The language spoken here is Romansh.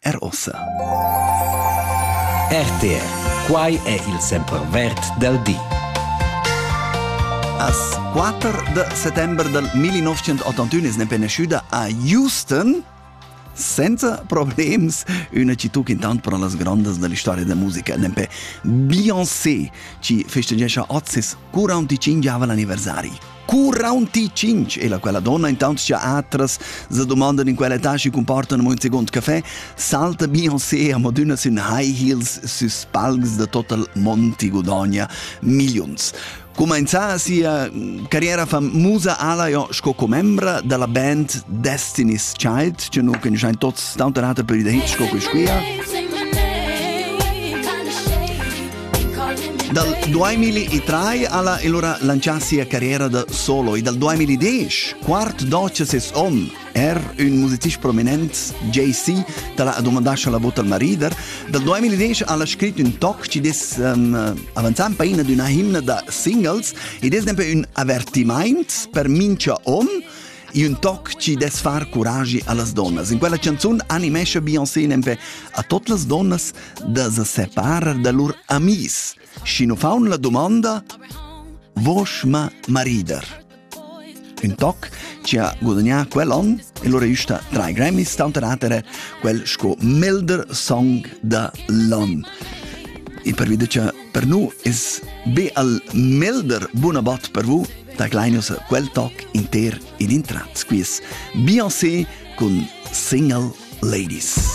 er ossa. RTR, quai è il sempervert del di. As 4 de settembre del 1981 es ne penesciuta a Houston senza problems una città intant per las grandes della storia della musica nempe Beyoncé ci festeggiasce oggi 45 anni anniversari Cu raunti cinc e la quella donna intant sia atras se domandan in quella tasci comportan mo un second café salta Beyoncé a madonna sün high heels süs palcs de total Monti Godogna millions Comenza sia carriera famusa alaio sco commembra della band Destiny's Child, che nu conosciamo tutti, tanta rata per i da hit sco questa qui. Dal 2003 ha la allora lancià sia carriera da solo e dal 2010, quart doce ses onn, er un musicist prominent, JC, tala ha domandà la vota al marider. Dal 2010 ha la scrit un toc ci des um, avanzà in paina d'una himna da singles ed è sempre un avertiment per mincha onn E un toc chi dess far curagi a las donnas. In quella canzun animescha Beyoncé nempe a tot las donnas da se separar da lur amis. Și nu faun la domanda Vosh ma maridar. Un toc ci ha gudagnà quell'on e lo registrà tra i Grammys, tanter atere quel sco Milder Song da l'on. E per videre per nu es be al Milder buona bat per vu da Gleinus quel toc inter in intrat squiz Beyoncé cun single Ladies.